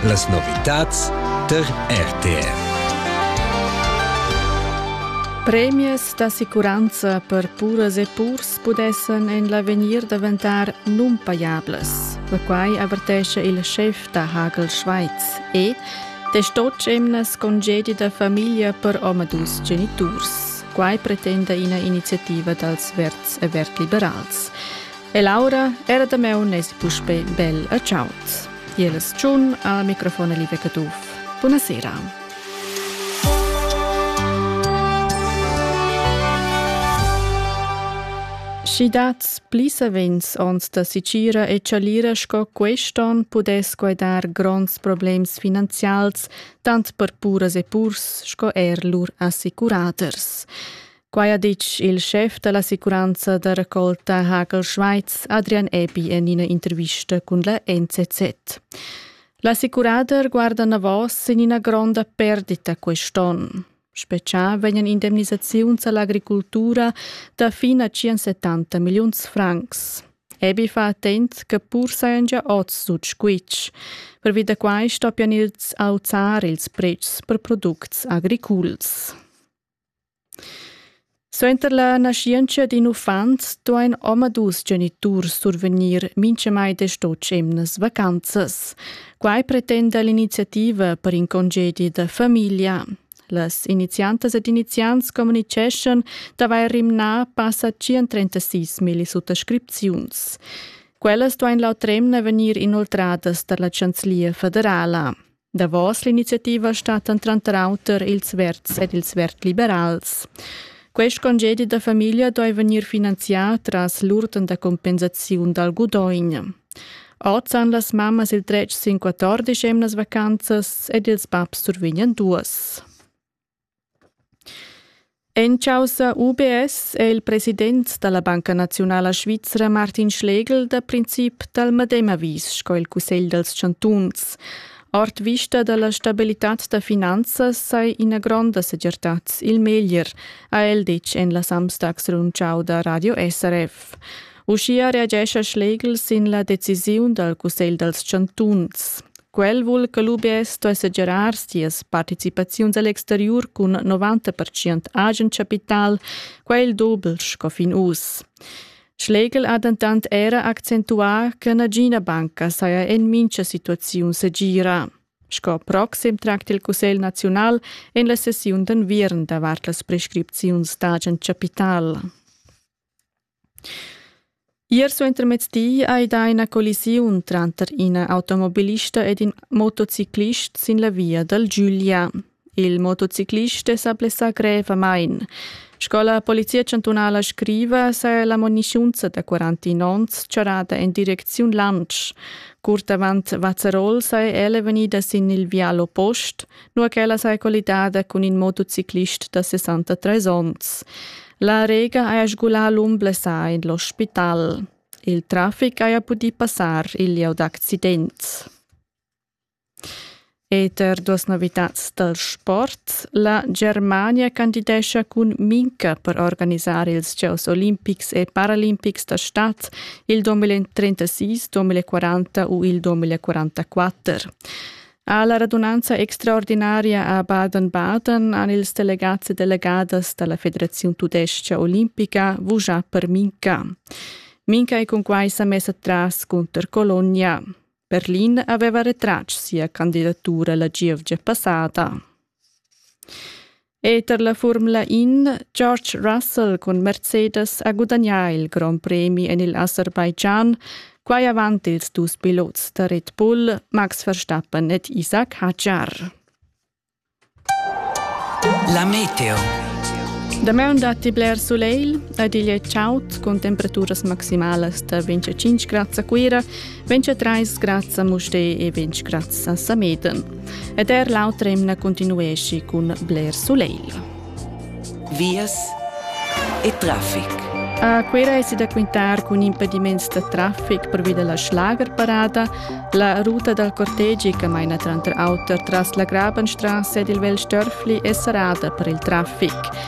Las novitads tar RTV. Premias d'assicuranza per puras e purs pudessan en l'avegnir daventar nunpajablas. La quai avertesce il chef da Hagel Schweiz e destotg emnas congedi da famiglia per omadus geniturs. Quai pretenda ina iniziativa dals verds e verd liberals. E Laura era da meu nes puspe bel a ciaut. Jelas tschun al microfon Live Caduff. Buonasera. Schi dat pli savens ons da sicira e chalira sco quest'on pudess guidar gronds problems finanzials tant per puras e purs sco er lur assicuraters. Quai ha ditg il schef da l'assicuranza da raccolta Hagel Schweiz, Adrian Epi, en ina intervista cun la NZZ. L'assicurader guarda navos en ina gronda perdita quest'onn. Special vegnan indemnisaziuns all'agricultura da fin a 170 milliuns francs. Ebi fa attent che pur sajan gia oz sut squitsch. Pervi da quai stoppian ils auzar ils pretschs per products agriculs. Suenter la naschientscha d'in uffant duain omadus geniturs survegnir mintgamai desch-otg emnas vacanzas. Quai pretenda l'iniziativa per in congedi da famiglia. Las iniziantas ed iniziants communitgeschan d'avair rimnà passa 136 milli suttascripziuns. Quellas duain l'autr'emna vegnir inoltradas tar la chanzlia federala. Davos l'iniziativa stattan tranter auter ils Verds ed ils Verd-liberals. Quest congedi da famiglia doi vegnir finanzià tras l'urten da compensaziun dal gudogn. Oz han las mammas il dretg sin 14 emnas vacanzas ed ils babs survegnan duas. En chaussa UBS è il president da la Banca naziunala svizra Martin Schlegel da princip dal medem avis sco il Cussegl dals chantuns. Ord vista da la stabilitad da finanzas sai ina gronda segirtad il meglier, ha el ditg en la Samstagsrundschau da Radio SRF. Uschia reagescha Schlegel sin la decisiun dal Cussegl dals chantuns. Quel vul che l'UBS sto segirar sias participaziuns a l'exteriur cun 90% agen chapital, quel doble sco fin uss. Schlegel ha dentant era accentuà che nagina banca saja en mincha situaziun segira. Sco proxim tracta il Cussegl naziunal en la sessiun d'enviern davart las prescripziuns d'agen chapital. Ier suentermezdi ei dà ina collisiun tranter ina automobilista ed in motociclist sin la via dal Giulia. Il motociclist è sa blessà grevamain. Sco la polizia chantunala scriva, saja la muniziunza da 49 onns charrada en direcziun Lantsch. Curt avant Vazerol sei ella vegnida sin il vial oppost, nua ch'ella saja collidada cun in motociclist da 63 onns. La Rega haja sgulà l'um blessà in l'ospital. Il trafic haja pudì passar il lieu d'accidents. Eter duas novitads dal sport, la Germania candidescha cun Minca per organisar ils Gieus olimpics e paralimpics da stad il 2036-2040 u il 2044. Ha la radunanza extraordinaria a Baden-Baden han ils delegats e delegadas dalla Federaziun tudestga olimpica vugià per Minca. Minca è cun quai sa messa tras cunter Colonia. Berlin aveva retratg sia candidatura la gievgia passada. Eter la Furmla In George Russell cun Mercedes ha gudagnà il grond premi en il Aserbaidschan, quai avant ils dus pilots da Red Bull Max Verstappen ed Isaac Hadjar. La meteo. Damaun datti bler sulegl ed igl è chaud cun temperaturas maximalas da 25 grads a Cuira Ventg trais grazia a Mustè e ventg grazia a Sameten. Ed er l'autra emna continuesci cun Blair Soleil. Vias e traffic. A Quera è da quintar cun impediments da traffic previda la schlagerparada, la ruta dal cortegi che maina tranter auter tras la Grabenstrasse ed il Velstörfli è serrada per il traffic.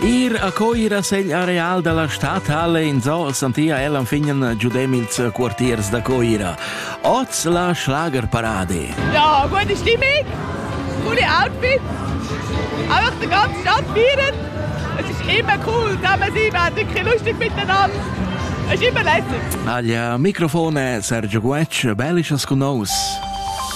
Ir a coira segl areal dalla stadhalle in Zoll santia el anfignen giudem ils quartiers da Coira. Oz la Schlagerparade. Ja, meine Stimmig, gute Outfits, auch die ganze Stadt feiern. Es ist immer cool, da man sie werden lustig miteinander. Es ist immer lässig. Aglia, Mikrofone, Sergio Guetsch, bellisches con